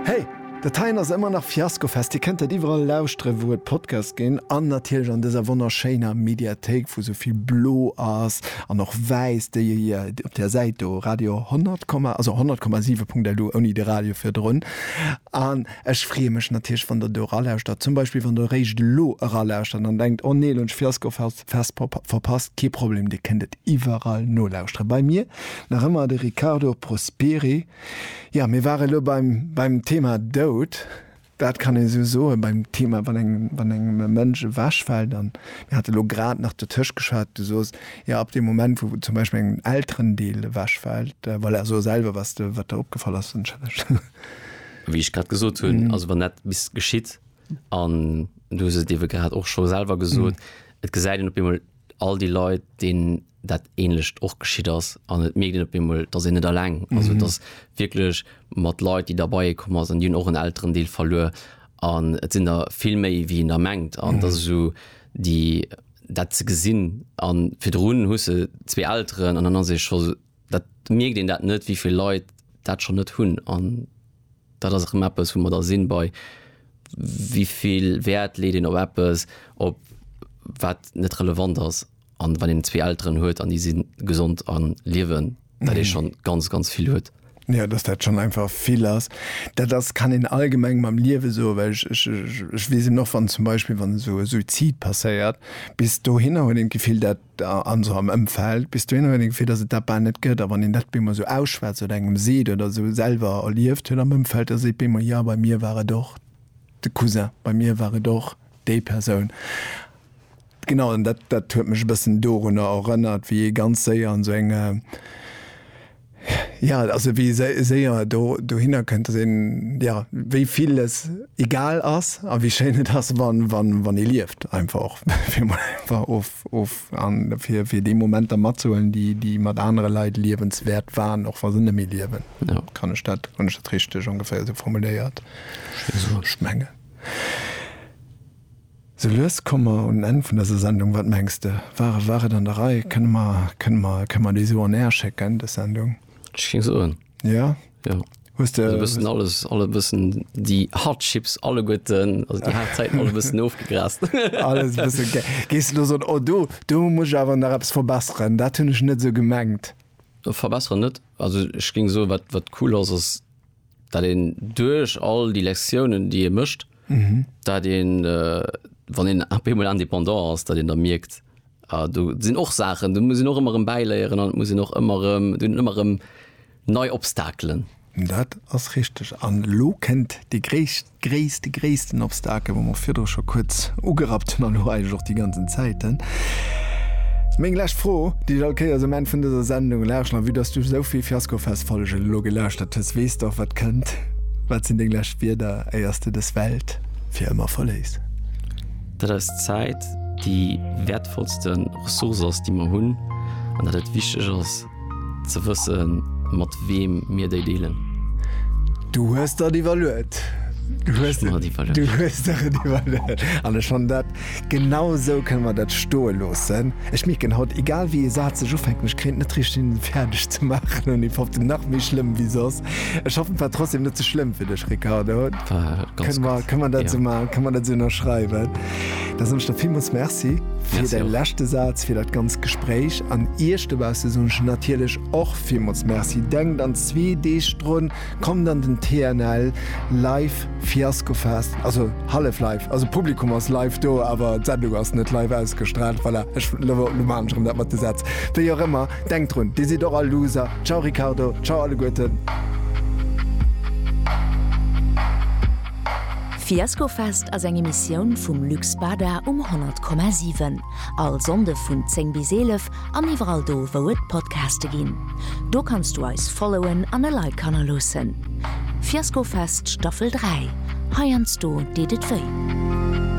Hey! Dat heien ass ëmmer nach Fiascofest. Dir kënnt dat iwwerall lauschtere wou et Podcast ginn an natierlech an dëser wonnerschéiner Mediathéik wou sou vill blo ass an och wäiss déi e je op där Säit do Radio 100 Komma also 100,7.lu ouni de Radio virdrun. An ech freeë mech natierlech wann der do eralauschtert. Zum Beispill wann der eréischt elo eralauschtert an denkt, Oh nee, elo hunn ech Fiascofest Vesper op verpasst, kee Problem, Dir kënnt et iwwerall nolauschtere bei mir. Nach ëmmer de Riccardo Prosperi. Jo, mir ware lo beim beim Thema Doud. Dat kann ee sou soen, beim Thema, wann eng wann engem e Mënsch ewechfält. An mir hate lo grad nach dotëscht geschwat, du sos, jo, ab deem Moment, wou zum Beispill engem en Elterendeel ewechfält, voilà, so selwer, was de wat der opgefall ass, wënschen ech. Wéi ech grad gesot hunn, also wann dat bis geschitt, An du hues et iewe grad och scho selwer gesot, et gesäit een op eemol all déi Leit, deenen dat Änlecht och geschitt ass an et mierkt een op eemol, dass een net eleng ass. Et ass wierklech mat Leit, déi der bei ee komm ass an déi hunn och en Elterendeel verluer an et sinn der vill méi, wéi een der mengt an dass esou déi dat ze gesinn a virdrun hues de zwee Elteren an dann ass ee scho Dat mierkt een dat net, wéivill Leit dat schonn net hunn. An dat ass erëm eppes, wou mer da sinn, bei wéivill Wäert leet een op eppes, op wat net relevant ass. An wann een zwee Elteren huet an déi si gesond a liewen, dat ee schonn ganz, ganz vill huet. Jo, dass dat schonn einfach vill ass. Dat ass, kann een allgemeng mam Liewe soen, well ech, ech, ech weess eben och, wann zum Beispill, wann esou e Suizid passéiert, bis dohinner huet een d'Gefill, dat da an esou am Ëmfeld, bis dohinner huet een d'Gefill, dass et dat bal net gëtt, a wann een dat bemol esou ausschwätzt oder engem seet oder esou selwer erlieft huet am Ëmfeld, da seet bemol, jo, bei mir war et och de Cousin, bei mir war et och déi Persoun. Genau, an dat, dat huet mech e bëssen dorunner erënnert, wéi ee ganz séier an esou eng. Ja, also wéi séier do dohinner kënnt, dass een, ja, wéi vill es egal ass a wéi schéin et ass, wann, wann, wann ee lieft einfach och, fir emol einfach of, of an fir, fir déi Momenter matzehuelen, déi, déi mat anere Leit liewenswäert waren, och wa se net méi liewen. Ja. Kann ech dat, hunn ech dat richteg ongeféier esou formuléiert? Ech mengen. Sou lues komme mer un den Enn vun dëser Sendung. Wat mengs de? War war et an der Rei? Kënne mer kënne mer kënne mer déi esou on air schécken, dës Sendung? Ech géing soen, Jo? jo. Hues de. Esou e bëssen alles, alle e bëssen déi hard chips alleguerten, also déi haart Zäiten alle e bëssen ofgegrast. Alles e bësse gé. Géings de elo soen, Oh, do do muss ech awer nach eppes verbesseren, dat hunn ech net esou gemengt? Verbesseren net. Also ech géing soen, wat wat cool ass, ass, dat een duerch all déi Lektiounen, déi ee mécht, dat een, wann een ap eemol indépendant ass, dat een da mierkt, ah do sinn och Saachen, do muss een och ëmmer erëm bäiléieren an et muss een och ëmmer erëm, do sinn ëmmer erëm nei Obstakelen. Dat ass richteg. An elo kënnt déi gréisst gréisst, gréissten Obstakel, wou mer virdru scho kuerz ugerappt hunn, an elo eigentlech och déi ganzen Zäiten. Meng lescht Fro, déi ech all Kéiers um Enn vun dëser Sendung laschen, a vue dass du esou vill Fiaskofest-Follegen elo gelauschtert hues, weess de och, wat kënnt. Wat sinn deng lescht Wierder, éier s de dës Welt fir ëmmer verléiss? Dat eis Zäit déi wäertvollste Ressource ass, déi mer hunn, an dat et wichteg ass, Ze wëssen, mat weem mir déi deelen. Du hues der et iwwerluet. Du hues der et iwwerluet. An ech fannen dat, genau esou kënne mer dat stoe loossen. Ech mierken haut, egal wéi ee Saz ech ufänken, ech kréien et net richteg hin, en fäerdeg ze maachen. An ee foppt en nach méi schlëmm wéi soss. Ech hoffen, et war trotzdem net ze schlëmm fir dech, Ricardo. War ganz gutt. Kënne mer dat esou ënnerschreiwen? Da soen ech der villmools Merci fir däi leschte Saz, fir dat ganz Gespréich an Iech dobausse soen ech natierlech och villmools Merci. Denkt an zwee Deeg drun, kommt an den TNL Live Fiaskofest, also hallef live, also d'Publikum ass live do, awer d'Sendung ass net live ausgestraalt. Voilà, ech lo maachen ech erëm dat mat de Sätz. Wéi och ëmmer, denkt drun, Dir sidd och all Loser. Ciao Ricardo, ciao alleguerten. D'Fiaskofest ass eng Emissioun vum Luc Spada um 100,7. All Sonnde vun 10 bis 11 an iwwerall do wou et Podcaste ginn. Do kanns du eis followen an e Like hannerloossen. Fiaskofest Staffel 3, heiansdo deet et wéi.